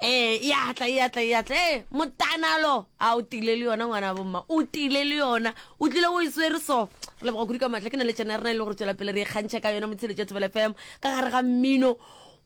Ee, e a tla, e a tla, e a tla. Ee, motanalo. A o tile le yona ngwana bomma. O tile le yona. O tlile o e swere so. Re leboga kudu ka matla ke na le tšena rena e le gore tswela pele re kgantšha ka yona motsheletša thobela fm ka gare ga mmino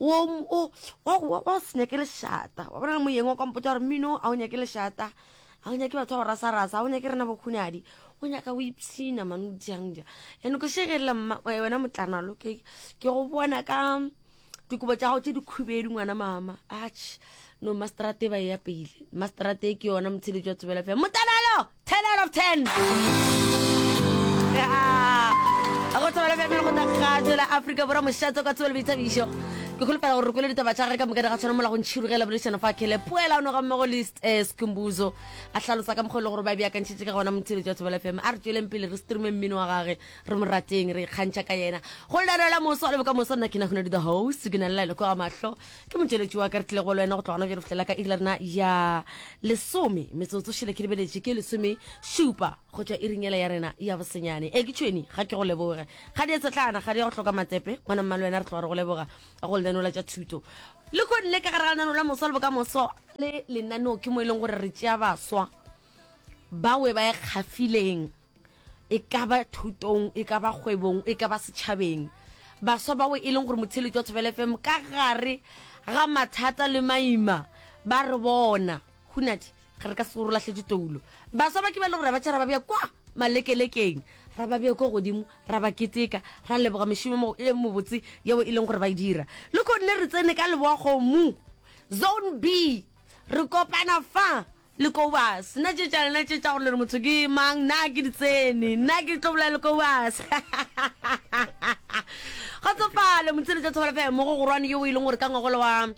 wa se nyake lešata wa bona le moyeng wa kwampotsa gore mmino a o nyake lešata ga o nyake batho ba go rasarasa ga o nyake rena bokhunadi o nyaka o ipshina mane o diangja and ko shegelela wena motlanalo ke go bona ka dikobo tša gago tše dikhubedu ngwana mama ach no masterate ba e ya pele masterate e ke yona motsheletso wa tsebela fela motanalo ten out of ten go tsebela fela go tagajo la aforika borwa mošatso ka tsebelo boithabišo ke kgolofela gore re kwele ditaba tša gage ka moka di ga tshwana mola go ntšhirugela boledišano fa kele poela o noga mmogo le eh, sekumbuzo a hlalosa ka mokgwa e le gore ba beakantšhitše ka gona motsheletso wa tsebela fela a re tšweleng pele re streame mmino wa gage re mo rateng re ikgantšha ka yena go lelwela moso wa le bokamoso nna ke nahonadi the host ke na lela leko ga mahlo ke motšweletši wa ka re tlile go le wena go tlogana bjalo fihlela ka iri la rena ya lesome metsotso šele ke lebeletše ke lesome šupa go tšwa e ringela ya rena ya bosenyane e ke tšhweni ga ke go leboge ga di etsetlana ga di ya go hloka matepe ngwana mmale wena re tloga re go leboga go lenanola tša thuto le ko nne ka gara lenaneo la moso wa le bokamoso le lenaneo ke mo e leng gore re tšea baswa bawe ba e kgafileng e ka ba thutong e ka ba kgwebong e ka ba setšhabeng baswa bao e leng gore motheletši wa thobela fm ka gare ga mathata le maima ba re bona hunadi ga re ka se gore latlhetse toulo baswa ba ke ba le gore ba tšha ra ba bja kwa malekelekeng ra ba bja kwa godimo ra ba keteka ra leboga mešomo e mobotse yeo e leng gore ba e dira le kgonne re tsene ka leboa kgomo zone b re kopana fa Lekowase, na tše tša lena tše tša gore le re motho ke mang, na ke di tsene? Nna ke tlo bolaya Lekowase. Kgotsofalo, Motshedi tša Thobela FM, mogo gorwane yo o e leng gore ka ngwagola wa um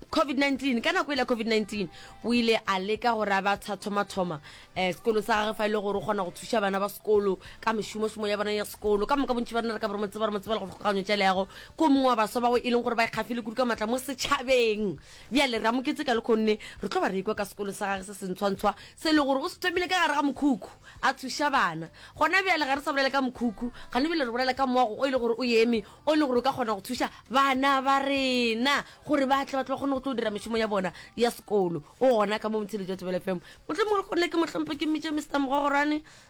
COVID-19 ka nako e la COVID-19 o ile a leka gore a ba thathomathoma um eh, sekolo sa gage fa e le gore o kgona go thuša bana ba sekolo ka mešomošomo ya bona ya sekolo ka moka bontši ba rena re ka boromotse ba romotse ba le go tlhokaganyo tša leago ko mongwe wa baswa bao e leng gore ba ikgafile kudu ka matla mo setšhabeng Bjale, re amoketše ka lekhonne, re tlo ba re ekwa ka sekolo sa gage se sentshwantshwa, se e le gore o se thomile ka gare ga mokhukhu, a thuša bana. Gona bjale ga re sa bolela ka mokhukhu, gane bjale re bolela ka moago o e le gore o eme, o e le gore o ka kgona go thuša bana ba rena gore ba tle ba tle ba kgone go tlo dira mešomo ya bona ya sekolo. O gona ka mo, Motheledi wa Thobela FM. Mohlomongwe lekhonne ke mo hlomphe, ke mmitše Mister Mogogorwane.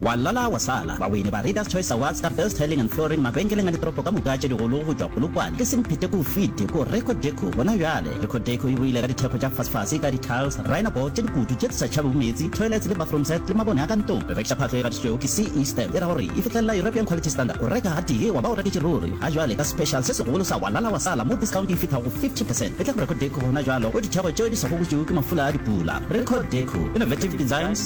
Wa lala wa sala. Bawini ba Readers Choice Awards ka Best Tiling and Flooring mabenkeleng a ditoropo ka moka tše digolo go tšwa Polokwane ke semphete k'o fite k'o Reco Deco gona bjale. Reco Deco e boile ka dithekgo tša fasfase ka di-tiles, rhino board tše dikutu tše tse sa tšhabego meetse, toilets le bathroom set le mabone a ka ntlong. Re rekiša phahlo e gatišitšwego ke CE stamp e ra gore e fihlelela European Quality Standard. O reka gatee wa ba o reketše ruri. Ga jwale ka special se segolo sa Wa lala wa sala mo discount e fithago go 50 percent e tla go Reco Deco gona bjalo k'o dithekgo tšeo di sa gokotšwego ke mafula a dipula. Reco Deco, Innovative Designs,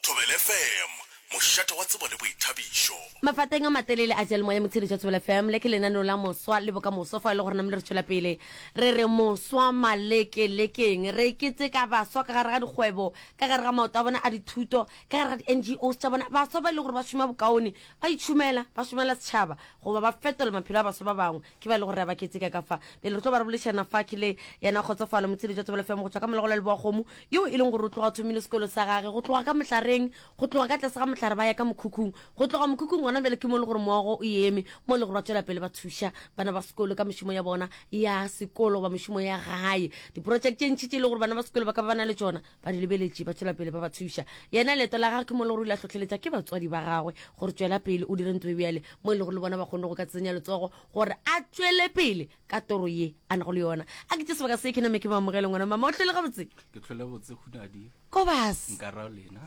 Thobela FM, mošate wa tsebo le boithabišo. Mafateng a matelele a Seyalemoya Motsheletši wa Thobela FM, le ke lenaneo la Moswa le Bokamoso fao e lego gore namile re tšwela pele re re moswa malekelekeng. Re keteka baswa ka gare ga dikgwebo, ka gare ga maoto a bona a dithuto, ka gare ga di-NGOs tša bona, baswa ba e lego gore ba šoma bokaone, ba itšhomela, ba šomela setšhaba goba ba fetola maphelo a baswa ba bangwe. ke ba le go re ba ketseka ka fa pele re tlo ba re bolešana fa ke le yena kgotsofalo motshedi jwa tsebelo femo go tswa ka molegola le boagomo yo e leng gore o tloga o thomile sekolo sa gage go tloga ka mohlareng go tloga ka tlase ga mohlare ba ya ka mokhukhung go tloga mokhukhung gona bjale ke mo le gore moago o eme mo le gore ba tswela pele ba thuša bana ba sekolo ka mešomo ya bona ya sekolo goba mešomo ya gae diprojekte tše ntši tše e le gore bana ba sekolo ba ka ba ba na le tšona ba di lebeletše ba tšwela pele ba ba thuša yena leeto la gagwe ke mo le gore o ile a hlohleletša ke batswadi ba gagwe gore tswela pele o dire ntlo e bjale mo e le gore le bona ba kgone go ka tsenya letsogo gore a tšwele pele ka toro ye a nago le yona a ke tse sebaka se ke name ke baamogele ngwana mama o tlhole gabotse ke tlhole botse khunadi kobas nkarao lena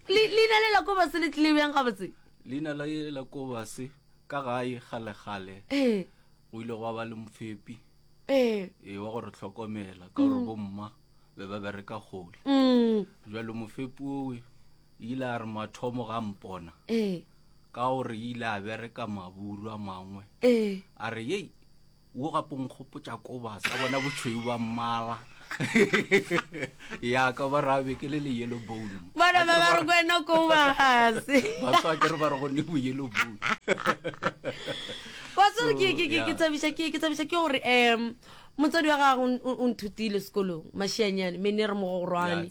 leina le la kobas le tlile bjang gabotse leina la kobas ka gae galegale ee. go ile go ba le mofepi ee ee wa gore tlhokomela ka gore bomma be ba bereka kgole mm, jalo mofepi owe ile a re mathomo ga mpona ee ka gore ile a bereka maburu a mangwe ee a re yei wo gape nkgopotša kobasa bona botshweu ba mmala ya ka ba rabe ke le le yellow bone bana ba ba re kwena ko magase ba tswa ke re ba re go ne bo yellow bone wa tsere ke ke ke tsabisha ke ke tsabisha ke gore em motsadi wa gago o nthutile sekolong mashianyane me ne re mogogorwane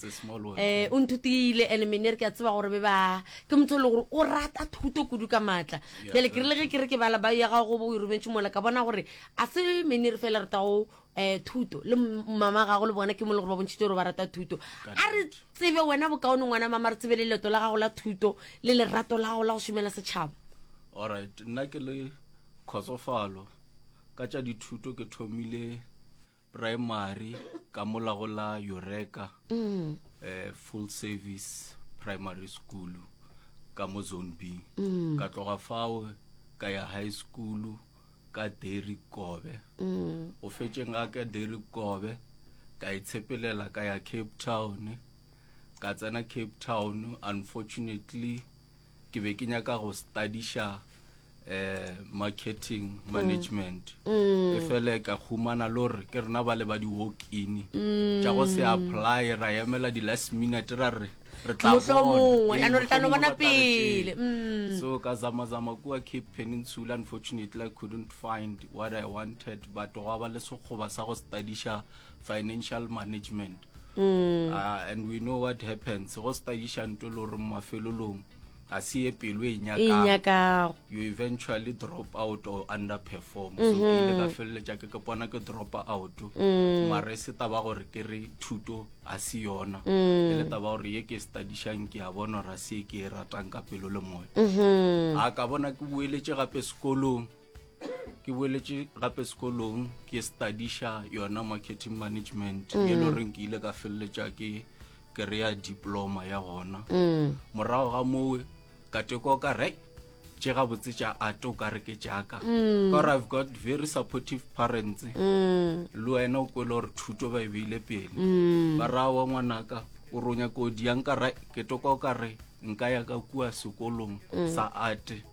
eh o nthutile and me ne re ke a tseba gore be ba ke motho le gore o rata thuto kudu ka matla bjale ke rile ge ke re ke bala ba ya gago go bo o e rometse mola ka bona gore a se me ne re fela re tago um thuto le mama gago le bona ke mo le gore ba bontšhitse gore ba rata thuto a re tsebe wena bokaone ngwana mama re tsebe le leto la gago la thuto le lerato la gago la go šomela setšhaba alright nna ke le kgotsofalo ka tša dithuto ke thomile primary ka molago la eureka um full service primary school ka mo zone b ka tloga fao ka ya high school ka dairy kobe mm. o fetšeng ga ka dairy kobe ka itshepelela e ka ya cape town ka tsena cape town unfortunately ke be ke nyaka go studiša eh marketing mm. management mm. e fele ka humana lore ke rena ba le ba di walk in tša go se apply ra yemela di last minute ra re re tla Mohlomongwe, bona. Ee, ya no re tla no mohlomongwe bona ba tla re pele, tšea. mm. so ka zamazama kua cape peninsula unfortunately i couldn't find what i wanted but gwa ba le sekgoba sa go studiša financial management Mm. uh, and we know what happens go studiša nto le gore mafelolong a se ye pelo e nyakago you eventually drop out or underperform so ke ile ka feleletša ke ke pona ke drop out mara e se taba gore ke re thuto a se yona e le taba gore ye ke studišang ke a bona gore a se ke e ratang ka pelo le moya a ka bona ke boeletse gape sekolong ke boeletše gape sekolong ke studiša yona marketing management e le goreng ke ile ka feleletša ke kry-a diploma ya gona morago ga mowe ka teko ka re tše gabotse tša ate o ka re ke jaaka ka gore i've got very supportive parents le wena o kwele gore thuto ba e beile pele ba raya wa ngwanaka o ronya kodi yang ka ra ke toko ka re nka ya ka kua sekolong sa ate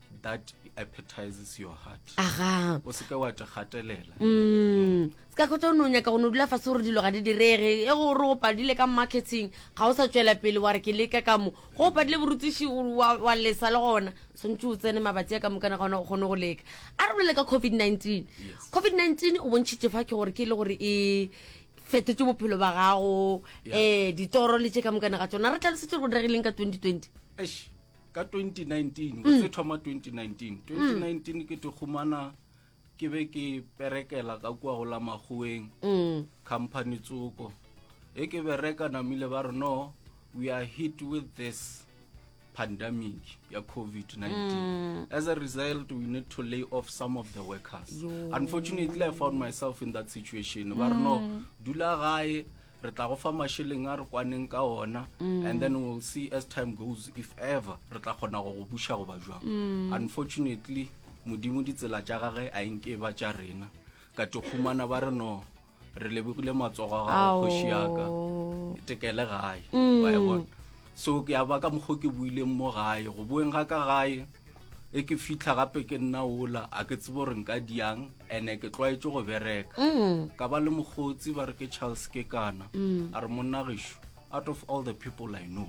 that appetizes your heart aga o seke wa te gatelela mm ska go tsono nya ka go dula fa sore dilo ga di direge e go re go padile ka marketing ga o sa tswela pele wa re ke leka ka mo go padile borutishi wa wa lesa le gona sontse o tsene mabatsi ka mokana gona go gone go leka a re bolela ka covid-19 covid-19 o bontšhitše fa ke gore ke le gore e fetotse bophelo ba gago um ditoro le tše ka mokana ga tsona re tla le setse go diregileng ka 2020 ka 2019 go se thoma 2019 2019 ke te khumana ke be ke perekela ka kua go la magoeng mm. company tsoko e ke bereka namile ba re no we are hit with this pandemic ya covid-19 mm. as a result we need to lay off some of the workers Yo. unfortunately i found myself in that situation ba re no mm. dula gae re tla go fa masheleng a re kwaneng ka ona mm. and then we'll see as time goes if ever re tla kgona go go buša goba jwang mm. unfortunately modimo ditsela tša gage a enke ba tša rena ka tokgumana ba re no re lebogile matsogo a gago kgoši yaka tekele gae mm. so ke ya ba ka mokgwa ke buileng mo gae go boeng ga ka gae e ke fitlha gape ke nna ola a ke tsebo gore nka diang ene ke tlwaetse go bereka mm. ka ba le mogotsi ba re ke charles ke kana mm. a re monnageso out of all the people i know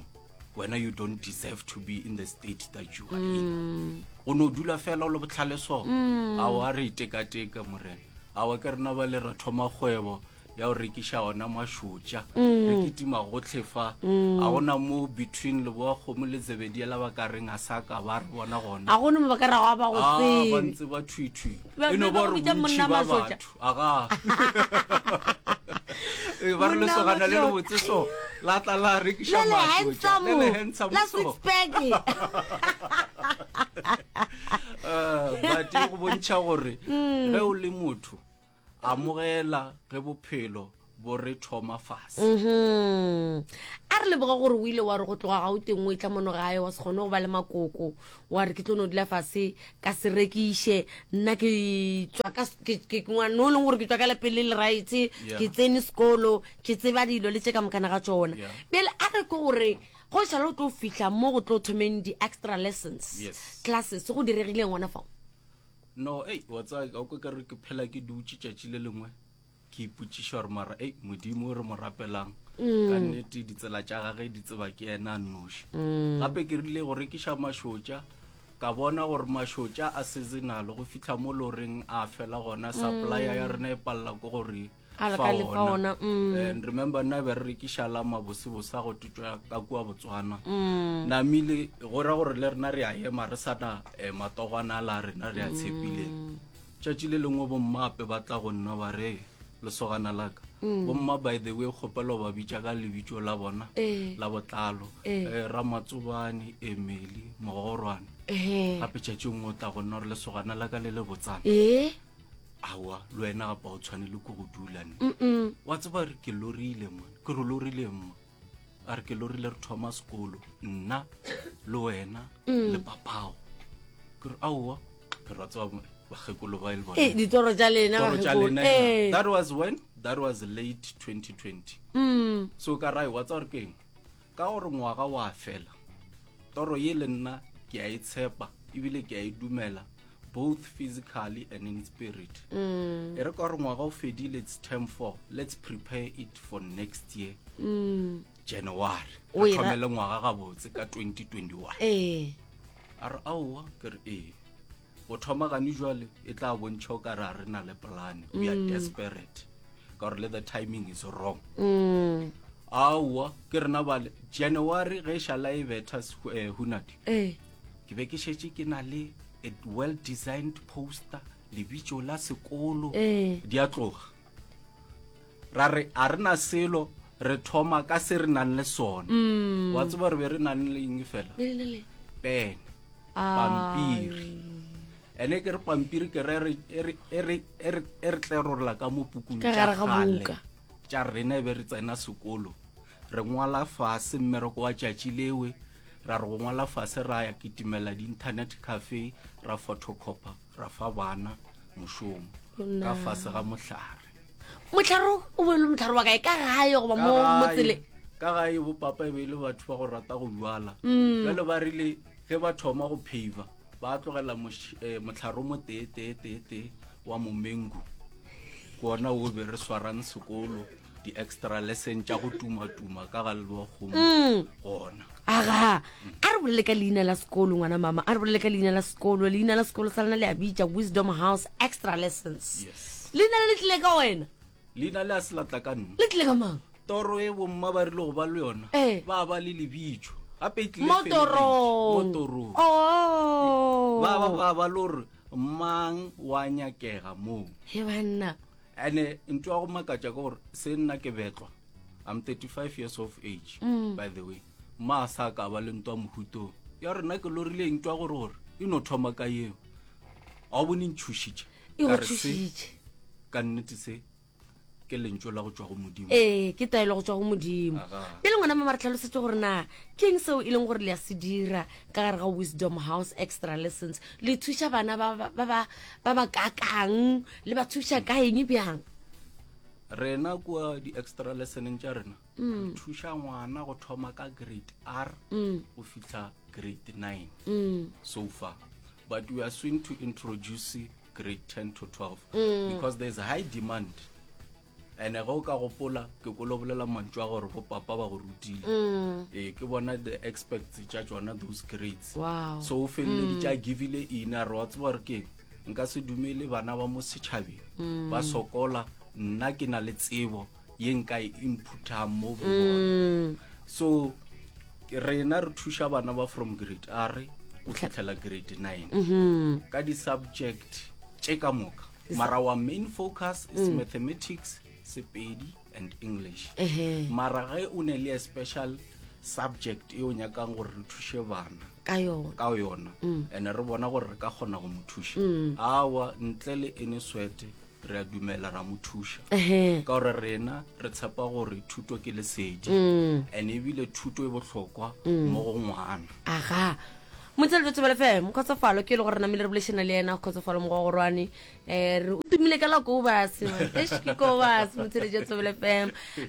wena you don't deserve to be in the state that you are in mm. o ne o dula fela o le botlhale so a o a re itekateka morena a wa ke rena ba le re thoma kgwebo ya go rekiša ona mašotša re kitima gotlhe fa a gona mo between leboa kgomo le tsebedia la ba ka reng a sa ka ba re bona gona a gone mo ba ka rago a ba go Ah, ba sele ntse ba thwithwi Ba- e no ba ba go re bitša bontši monna ba mašotša. batho aga Ee, ba re Monna lesogana le mašotša. lebotse so la tla la rekiša le le mašotša handsome le le handsome la so six pack Eh, but e go bontšha gore ge o le motho amogela ge bophelo bo re thoma fase mhm. a re leboga gore o ile wa re go tloga ga o teng o e tla mono gae wa se kgone go ba le makoko wa re ke tlo no dula fase ka se rekiše nna ke ngwane o leng gore ke tswa ka lepele le raetse ke tsene sekolo ke tseba dilo le tse ka mokana ga tsona pele a re ke gore go šala o tlo fitlha mo go tlo thomeng di-extra lessons classes go diregileng gona fao no ei wa tsaya ka o ka re ke phela ke dutše tšatši le lengwe ke ipotsiša gore mara ei modimo o re mo rapelang mm. ka nnete ditsela tša gage di tseba ke ena a nnoši mm. gape ke rile go rekiša mašotša ka bona gore mašotša a seasonal go fitlha mo loreng a fela gona supplya ya mm. rena e palela ko gore and remember nna be re rekiša la mabosebose a go tutswa ka kua botswana mm. namile go ra gore le rena re a ema re sana eh, matogwana a la rena re a mm. tshepile tšatši le lengwe bommape ba tla go nna ba re lesogana laka mm. bomma by the way kgopelo ba bitša ka lebitso la bona eh. la botlalo eh. eh, ramatsobane emeli mogorwane gape tšatši ngwe o tla go nna gore lesogana laka le le botsana awa le wena gapa o tshwanele ko go dula ne wa tseba re ke lorile mo ke re lorile mo a re ke lorile re thoma sekolo nna le wena le papago ke re aowa ke ra tseba bakgekolo ba e le Eh, ditoro tša lena Toro tša bakgekolo. lena Eh. that was when that was late 2020 Mm. so ka rae wa tsa gore keng Ka gore ngwaga wa fela, toro ye le nna ke a e tshepa ebile ke a e dumela both physically and in spirit mm. e re ka gore ngwaga o fedile it's term four let's prepare it for next year mm. january re thomele ngwaga gabotse ka 2021 ee a re aowa ke re ee go thoma gane jwale e tla bontšha o ka re a re na le plan we are mm. desperate ka gore le the timing is wrong mm. aowa ke rena bale january ge e šala e betha eh, hunadi eh. ke be ke šetse ke na le a well designed poster lebitso la sekolo eh. di a tloga ra re a re na selo re thoma ka se re nang le sone mm. wa tseba re be re nang le eng fela pene pampiri ene ke re pampiri ke re e re e re e re e re tlerorola ka mo pukung ka gare ga buka tša rena e be re tsena sekolo re ngwala fase mmereko wa tšatši lewe ra re go ngwala fase ra ya kitimela di-internet cafe ra photocopper ra fa bana mošomo ka fase ga mohlare mohlare o be e le mohlare wa kae ka gae goba mo motsele ka gae bo papa e be e le batho ba go rata go jala mm. jale ba rile ge ba thoma go pheiva ba tlogela eh, mohlare o mo tee tee tee tee wa momengu kona o be re swarang sekolo di-extra lesson tša go tumatuma ka ga leloa kgomo mm. gona aga a re bolele ka leina la sekolo ngwana mama a re bolele ka leina la sekolo leina la sekolo sa lena le a bitša wisdom house extra lessons leina le le tlile ka wena leina le a se latla ka nna le tlile ka mang toro e bomma ba rile go ba le yona eh. ba ba le lebitso gape e tlilmotorong oh. ba ba ba ba le gore mang wa nyakega moo he banna ene ntho ya go makatša ke gore se nna ke betlwa i'm 35 years of age mm. by the way ma sa ka ba le ntwa mohutong ya rena ke lorile ntwa gore gore e no thoma ka eo ga o bone ntšhošitše e ka re se ka nnete se ke lentso la go tswa go modimo ee ke taelo go tswa go modimo pele ngwana mama re tlhalosetse gore na ke eng seo e leng gore le ya se dira ka gare ga wisdom house extra lessons le thuša bana ba ba kakang le ba thuša ka eng bjang rena kua di-extra lessoneng tša rena mm. re thuša ngwana go thoma ka grade r mm. go fitlha grade nine mm. so far but we are soon to introduce grade ten to twelve because there is a high demand ene ge o ka gopola ke ko lobolela mantšu a gore bopapa ba go rutile mm. ee ke bona the experts tša tsona those grades wow. so o feleleditše mm. a givile ina re wa tseba gore keng nka se dumele bana ba mo setšhabeng mm. ba sokola nna ke na le tsebo ye nka e inputhang mo go bona so rena re thuša bana ba from grade a re o tlhatlhela grade nine mm-hmm. ka di-subject tše ka moka mara wa main focus is mm. mathematics sepedi and english uh -huh. mara ge o ne le a special subject e o nyakang gore re thushe bana ka yona mm. and re bona gore re ka kgona go mo thuša mm. awa ntle le ene swete re a dumela ra mo thuša ka gore rena re tshepa gore thuto ke lesedi mm. and ebile thuto e bohlokwa mo go ngwana aga Motse le Tšatši ba lefe mokgotsofalo ke e le gore namile re bolešana le yena kgotsofalo mogogorwane eh, re o tumile ka la kobas eish ke kobas Motse le Tšatši ba lefe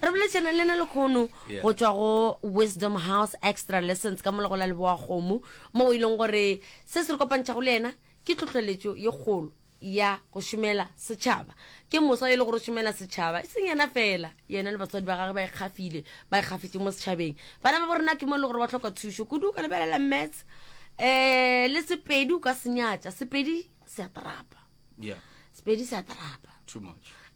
re bolešana le yena lekgono Yeah. go tšwa go wisdom house extra lessons ka molego la leboa kgomo mo o e leng gore se se re kopantšhago le yena ke tlhotlheletšo ye kgolo ya go šomela setšhaba. Ke mosa e le gore o šomela setšhaba, e seng yena fela. Yena le batswadi ba gage ba ikgafile, ba ikgafetše mo setšhabeng. Bana ba bo rena ke mo e le gore ba tlhoka thušo kudu. O ka lebelela Maths um le Sepedi, o ka se nyatša. Sepedi se a tarapa, Sepedi se a tarapa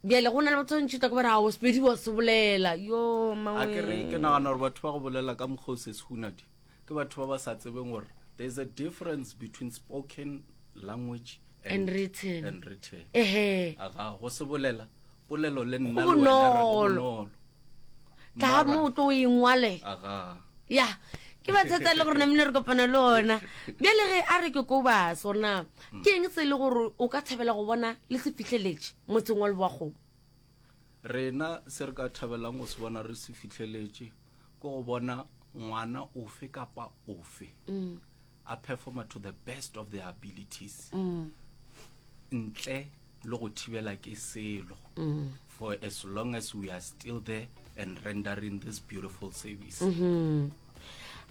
bjale go na le batho ba ntšhita ke bare ao Sepedi wa se bolela yo mangwe. Ke nagana gore batho ba go bolela ka mokgwa o se se hunadi Ke batho ba ba sa tsebeng gore there is a difference between spoken language and, and written. And written. Ehe. Aga go se bolela polelo le nna le wena re bonolo. Tla mo tlo ingwale. Aga. Ya. ke ba thata le gore namine re kopana le ona bjale ge a re ke ko ba sona ke eng se e le gore o ka thabela go bona le se fitlheletse motseng wa leboagomo Rena se re ka thabelang go se bona re se fihleletše ke go bona ngwana ofe kapa ofe mm. a performa to the best of their abilities mm. ntle le go thibela ke selo mm. for as long as we are still there and rendering this beautiful service mm -hmm.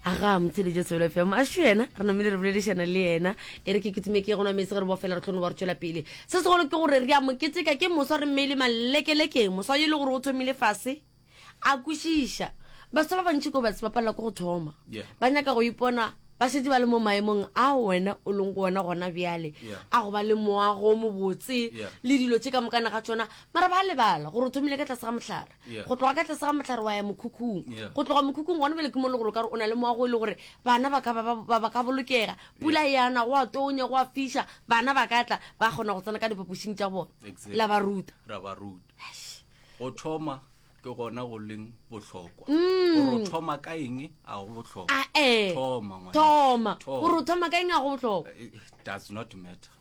aga motheletše solo fm a šo yena re namile re boledišana le yena e re ke kutime ke gona metse ge re bofela re tlhono ba re tšwela pele se segolo ke gore re a moketeka ke moswa re mmeile malekelekeng moswa e le gore o thomile fase a kwešiša baswa ba bantši ko batse ba palela ko go thoma ba nyaka go ipona ba šetse ba le mo maemong a wena o leng go ona gona bjale a go ba le moago mobotse le dilo tše ka mokana ga tsona mara ba lebala gore o thomile ka tlase ga mohlare go tloga ka tlase ga mohlare wa ya mokhukhung go tloga mokhukhung gona bjale ke mo le gore o ka re o na le moago e le gore bana ba ka bolokega pula yana go a tonya go a fiša bana ba ka tla ba kgona go tsena ka diphapošing tša bona la ba ruta ra ba ruta go thoma ke gona go leng bohlokwa mm. thoma ka eng a go bohlokwa ah, eh. thoma gore thoma ka eng a go bohlokwa eh, eh, does not matter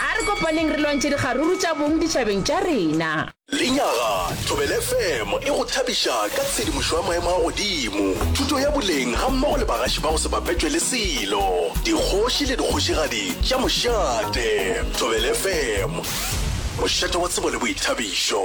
A re kopaneng re lwantšhe dikgaruru tša bong ditšhabeng tša rena. Lenyaga, Thobela FM e go thabiša ka tshedimošo ya maemo a godimo, thuto ya boleng gammogo le bagaši ba go se bapetšwe le selo, dikgoši le dikgošigadi tša mošate. Thobela FM, mošate wa tsebo le boithabišo.